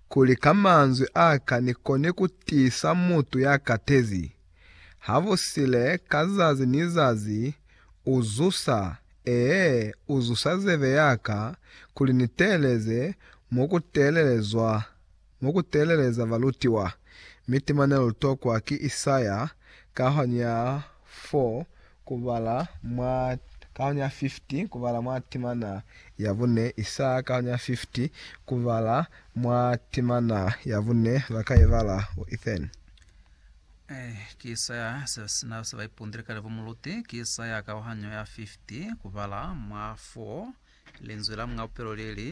kuli ka manzwi a ka ni kone ku tiisa mutu ya katezi. Havusile ka zazi ni zazi u zusa, ee, u zusa zebe ya ka kuli ni teeleze mwa ku teelelezwa, mwa ku teeleleza balutiwa. Mi temana lu tokwa ki Isaya, kahwani ya 4, Kubala mwa kaho nya 50 kubala mwa timana ya bune isa kaho nya 50 kubala mwa timana ya bune ba ka ibala u Ethan. Eh, ki Isaya se sina se ba ipundile kale bo muluti. Ki Isaya kaohanyo ya 50 kubala mwa 4. Linzwi la Muñ'a Bupilo li li,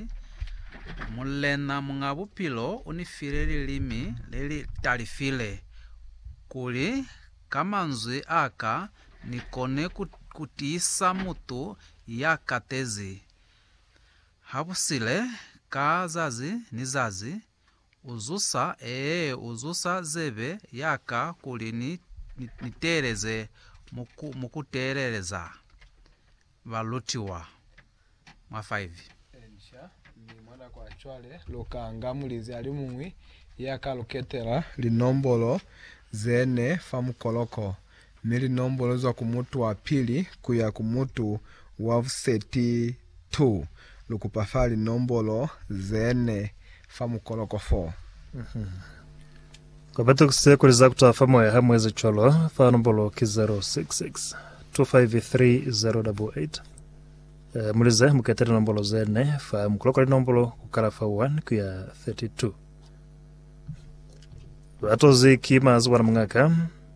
Mulena Muñ'a Bupilo u ni file lilimi le li talifile, kuli ka manzwi a ka ni kone ku, ku tiisa mutu ya katezi habusile ka zazi ni zazi, U zusa, ee, u zusa zebe ya ka kuli ni, ni, ni teeleze mu, ku, mu ku teeleleza, balutiwa. Mwa 5. Encia, mi mwa nako ya cwale lu ka nga mulinzi alimuñwi ya ka lu ketela linombolo ze ne fa mukoloko, mi linombolo zwa ku mutu wa pili ku ya ku mutu wa buseti tu lu kupa fa linombolo ze ne fa mukoloko foo. Kopeta ku siekuli za ku taha fa moya ha mu ezi cwalo, fa nombolo ki 0662533088. E, mu lize mu kete linombolo ze ne fa mukoloko linombolo ku kala fa 1 ku ya 32. Batozi ki mazi kwa na muñ'a ka.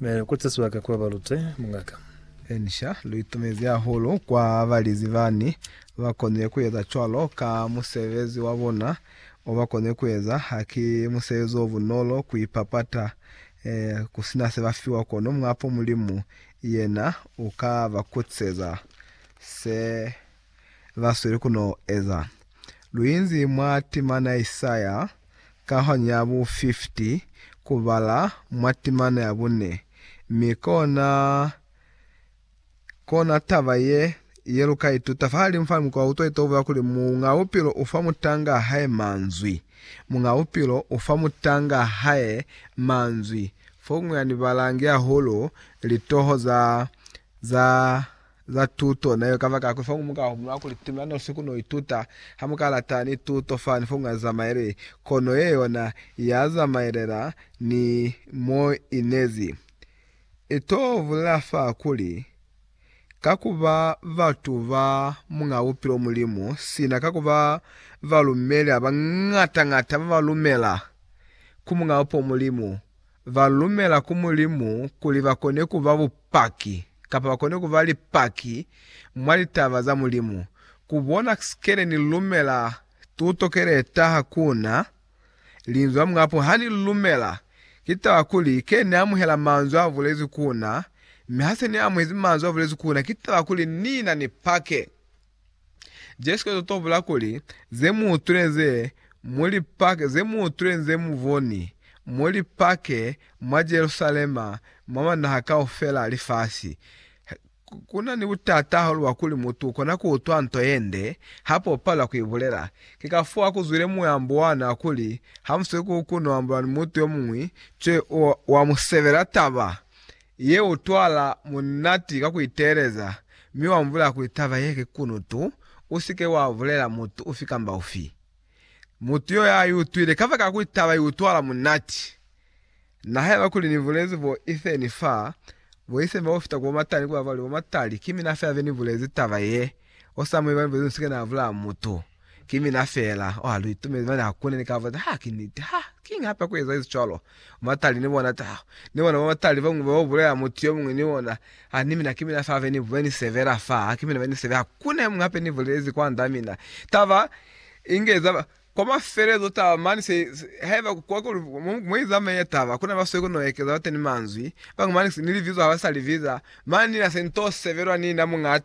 Ne ku tisiwa ka kuba balute, mungaka. Elisha, lu itumezi hahulu kwa balizi bani ba konile ku eza cwalo ka musebezi wa bona o ba konile ku eza. Ha ki musebezi o bunolo ku ipapata ku sina se ba fiwa, kono mwa po Mulimu yena u ka ba kutiseza se. la sweli ku no eza. Lu inzi mwa timana Isaya kahwani ya bu 50 ku bala mwa timana ya bu 4, mi kona, kona taba ye, ye lu ka ituta fahalimu fani, Mukwa Uto ito ubulela kuli, Muñ'a Bupilo ufa mutang'a hae manzwi. Muñ'a Bupilo ufa mutang'a hae manzwi. Fokuñwi ya ni balangi hahulu litoho za, za. za tuto nayo kabakala kuli fang'wi muka humula kuli tuna no si kuno ituta ha muka lata ni tuto fani fang'wi ya zamaele kono ye yona ya zamaelela ni mo inezi i to bulela fa kuli ka kuba batu ba Muñ'a Bupilo Mulimu sina ka kuba balumeli aba ngata ngata ba ba lumela ku Muñ'a Bupilo Mulimu ba lumela ku Mulimu kuli ba kone ku ba bupaki, kapa ba kone ku ba lipaki mwa litaba za Mulimu. Ku bona kene ni lumela tuto ke ne taha ku na, linzwi la Muñapo ha ni li lumela, ki taba kuli ke ni amuhela manzwi a bulezwi ku na, mi ha se ni amuhezi manzwi a bulezwi ku na, ki taba kuli ni na ni pake. Jesu Kristo tobula kuli, Ze mu utwile nze mu lipake, ze mu utwile nze mu boni mu lipake mwa Jerusalema, mwa manaha kaufela a lifasi. Ku na ni butata hahulu bwa kuli mutu u kona ku utwa nto ye nde, hape u palelwa ku i bulela. Ki kafoo ha ku zwile muambo wa na kuli, Ha mu si ku ku no ambolwa ni mutu yo muñwi, cwale wa mu sebela taba. Ye utwala munati ka kuiteeleza, mi wa mbulela kuli taba ye ki kunutu, usike wa bulela mutu ufi kamba ufi. Mutu yo ya iutwile kabakala kuli taba i utwala munati. Na haiba kuli ni bulezi bo iseni fa, bo iseni ba bofita ku bo matali ni ku ba bali bo matali, ki mina fela be ni bulezi taba ye, osa mwendi wa ni bulezi, Usike na bulela mutu. Ki mina fela. Oh, lu itumezi, mane hakuna ni ka botsa, ha, ki niti, ha, kiñi hape ku eza cwalo? Bamatali ni bona, ta, ni bona bamatali bañwi bao bulela mutu yomuñwi ni bona, ha, ni mina, ki mina fa be ni, be ni sebela fa, ha, ki mina be ni sebela, hakuna yomuñwi hape ni bulezi kwand'a mina. Taba inge iza ba, kwa mafelezo taba mane se, se, haiba ku kwa kuli mo, mo iza mea taba, kuna ba sweli ku no ekeza bateni manzwi, bañwi mane ni libizo ha ba sa li biza, mane nina se ni to sebelwa ni na muñ'a ta.